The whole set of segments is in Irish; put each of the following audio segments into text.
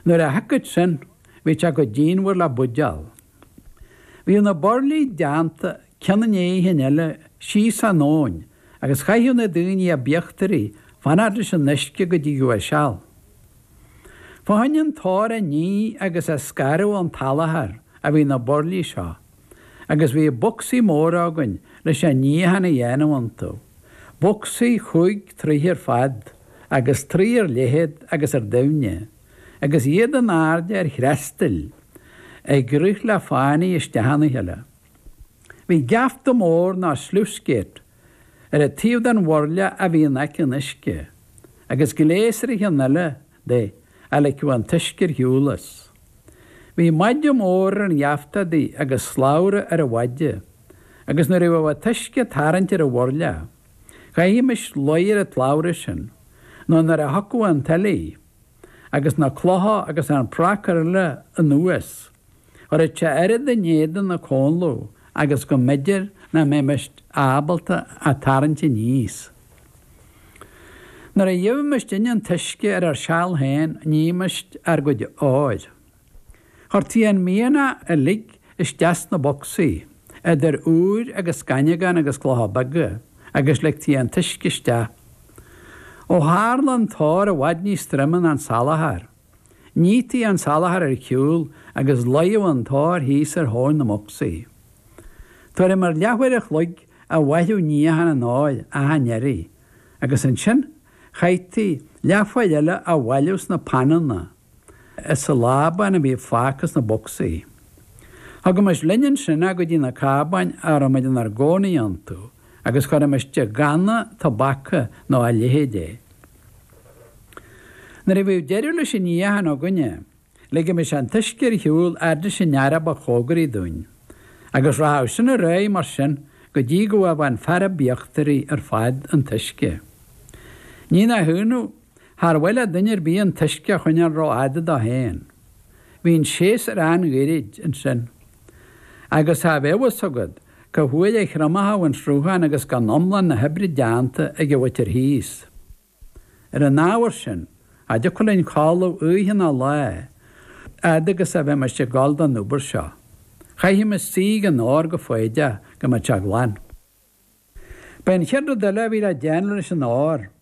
Nuair a shiocadh sin, bhíodh sé chomh díonmhar le buidéal. Bhíodh na burlaí deánta ceann i ndiaidh an chinn eile síos an abhainn agus chaitheadh na daoine a b'íochtaraí fanacht leis an uisce go dtigeadh a seal. Fá choinne an t-ór a ní agus a scaradh ón tsalachar a bhí na burlaí seo. agus bhí bocsaí móra againn leis an níochán a dhéanamh iontu, bocsaí chúig troigh ar fad agus troigh ar leithead agus ar doimhne, agus iad in airde ar thristéil ag rith le fánaidh isteach ina chéile. Bhí geafta mór nó sluice gate ar an taobh den bhurla a bhí in aice an uisce, agus gléas ar an cheann eile de a ligfeadh an t-uisce ar shiúl as. Bhí maide mór ar an gheafta adaí agus slabhra ar an mhaide, agus nuair a bhíodh an t-uisce ag tarraingt ar an bhurla, chaithimis luí ar an tslabhra sin, nó nuair a thiocfadh an tuile, agus na clocha agus an pracar eile anuas, chuirtí oiread in éadan na comhladh agus go mb'fhéidir nach mbeimis ábalta a tarraingt aníos. Nuair a gheibhimisinne an t-uisce ar ár seal féin nímis ár gcuid óir. Chuirtí an mianach uilig isteach sna bocsaí, idir ór agus scaineagán agus clocha beaga, agus ligtí an t-uisce isteach. Ó tharla an t-ór i bhfad níos troime ná an salachar, Nítí an salachar ar shiúl agus luíodh an t-ór thíos ar thóin na mbocsaí. Tuairim ar leathuair a chloig a mhaireadh níochán an óir achan iarraidh, agus ansin chaití leathuair eile á bhailiú sna pananna as an lábán a bhí fágtha sna bocsaí. Thugaimis linn ansin é go dtí na cábáin a raibh muid inár gcónaí iontu, agus chuirimis i gcanna tobaca nó a leithéid é. Nuair a bhíodh deireadh leis an níochán againne, ligimis an t-uisce ar shiúl a fhad leis an fhear a ba chóngaraí dúinn, agus rachadh sin ar aghaidh mar sin go dtí go bhfaigheadh an fear a b'íochtaraí ar fad an t-uisce. Ní nach ionadh, char mhaith le duine ar bith an t-uisce a choinneáil rófhada dó féin. Bhí an séasúr an-ghairid ansin. Agus cha bheadh a fhios agat, cá huair a thriomóchadh an sruthán agus gan iomlán na hoibre déanta ag an mhuintir thíos? Ar an ábhar sin, cha dtiocfadh linn codladh oíche ná lá fhad agus a bheimis ag gabháil don obair seo, chaithfimis suí ag an ór go foighdeach go mbeadh sé glan. B'é an chéad rud eile a bhí le déanamh leis an ór.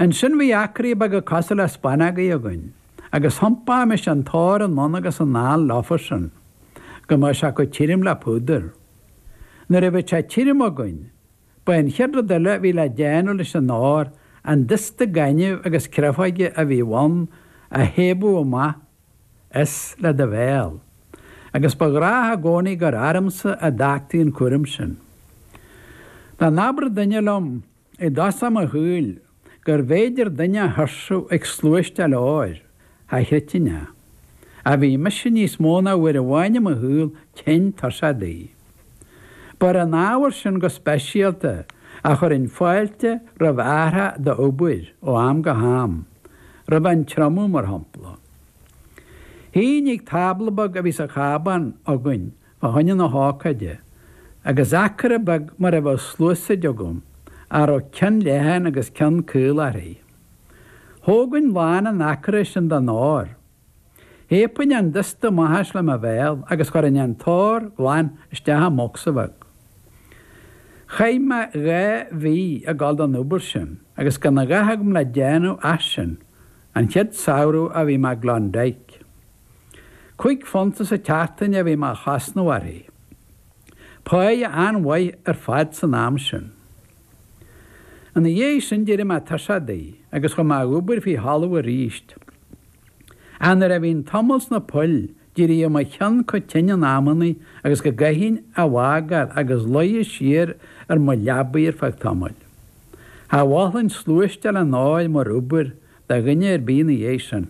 Ansin bhí acraí beaga cosúil le spanógaí againn, agus thiompaímis an t-ór anonn agus anall leofa sin, go mbeadh sé chomh tirim le púdar. Nuair a bhíodh sé tirim againn, ba é an chéad rud eile a bhí le déanamh leis an ór an dusta gainimh agus créafóige a bhí ann a shiabadh amach as le do bhéal, agus ba ghnách i gcónaí gur ormsa a d'fhágtaí an cúram sin. Dá n-abradh duine liom I dtosach mo shaoil, gurbh fhéidir duine a thuirsiú ag sluaisteáil óir, cha chreidfinn é, ach bhí mise níos mó ná uair amháin i mo shaol tinn tuirseach de. Ba ar an ábhar sin go speisialta a chuirfinn fáilte roimh athrach d'obair ó am go ham, roimh an triomú, mar shampla. Shuínn ag tábla beag a bhí sa chábán againn fá choinne na hócáide, agus acra beag mar a bheadh sluasaid agam, a raibh ceann leathan agus ceann caol uirthi. Thógainn lán an acra sin den ór. Shiabainn an dusta amach as le mo bhéal agus chuirinn an t-ór glan isteach i mbocsa bheag. Chaith mé dhá mhí ag dul don obair sin agus gan a dhath agam le déanamh ach sin, an chéad samhradh a bhí mé i gClondyke. Cúig phunta sa tseachtain a bhí mé a chosnamh uirthi. Páighe an-mhaith ar fad san am sin. Ina dhiaidh sin d'éirigh mé tuirseach di agus chuaigh mé a dh'obair faoi thalamh aríst. Ach nuair a bhínn tamall sna poill d'éiríodh mo cheann chomh tinn in amannaí agus go gcaithfinn a bhfágáil agus luí siar ar mo leabaidh ar feadh tamaill. Cha mholfainn sluaisteáil an óir mar obair do dhuine ar bith ina dhiaidh sin.